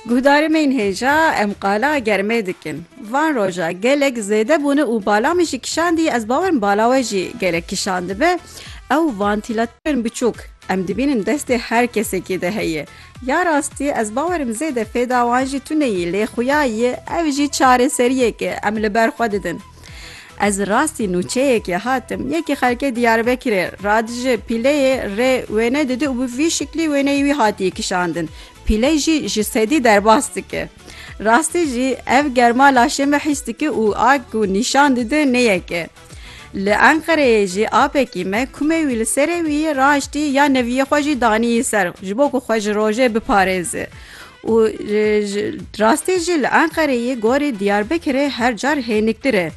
Guhdarîmên hêja em qala germê dikin. Van roja gelek zêde bûne û bala min jî kişandî ez bawerim bala we jî gelek kişandibe ew vantîlatîrên biçûk em dibînin destê her kesekî de heye. Ya rastî ez bawerim zêde fêda wan jî tuneyî lê xuya yê ev jî çareseriyek e em li ber xwe didin. Ez rastî nûçeyekê hatim. Yekî xelkê Diyarbekirê radije pîleyê rê wêne didi û bi vî şiklî wêneyê wî hatiye kişandin. Pîley jî ji sedî derbas dike. Rastî jî ev germa laşê me hîs dike û a ku nîşan dide ne yek e. Li Enqereyê jî apekî me kumê wî li serê wî yê raştî ya neviyê xwe jî daniyî ser ji bo ku xwe ji rojê biparêze. Û ji rastî jî li Enqereyê gorî Diyarbekirê her car hêniktir e.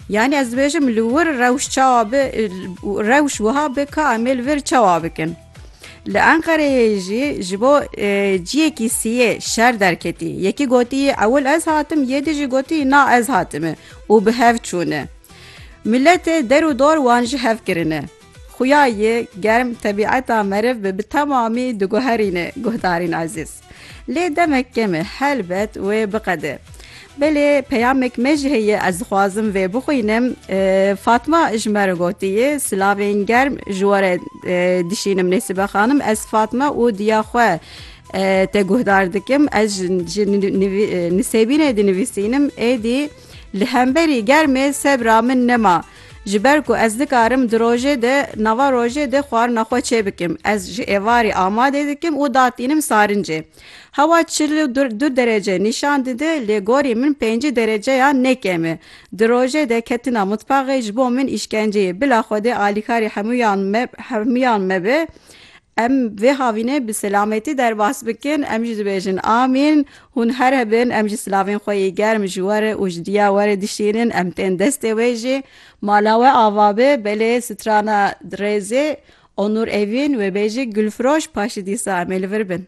Yanî ez dibêjim li wir rewş çawa bi rewş wiha bi ka em ê li vir çawa bikin. Li Enqereyê jî ji bo ciyekî siyê şer derketî. Yekî gotî ewil ez hatim yê di jî gotî na ez hatime û bi hev çûne. Miletê der û dor wan ji hev kirine. Xuya yê germ tebîeta meriv bi bi temamî diguherîne guhdarên ezîz. Lê demek kem e helbet wê biqede. Belê peyamek me jî heye ez dixwazim vê bixwînim. Fatma ji me re gotiye, Silavên germ ji we re dişînim Nêsibe Xanim ez Fatma û diya xwe te guhdar dikim. Ez ji nisêbînê dinivîsînim êdî li hemberî germê sebra min nema. Ji ber ku ez nikarim di rojê de nava rojê de xwarina xwe çêbikim, ez ji êvarê amadê dikim û datînim sarincê. Hewa çil û du derece nîşan dide lê gorî min pêncî dereceyan ne kêm e. Di rojê de ketina mitbaxê ji bo min îşkenceyê. Bila Xwedê alîkarî hemûyan me hemûyan me be. Em vê havînê bi selametî derbas bikin, em jî dibêjin Amîn. Hûn her hebin, em jî silavên xwe yê germ ji we re û ji diya we re dişînin, em tên destê wê jî. Mala we ava be, belê strana dirêzê, Onur Evîn, wê bêjî Gulfiroş, paşî dîsa em ê li vir bin.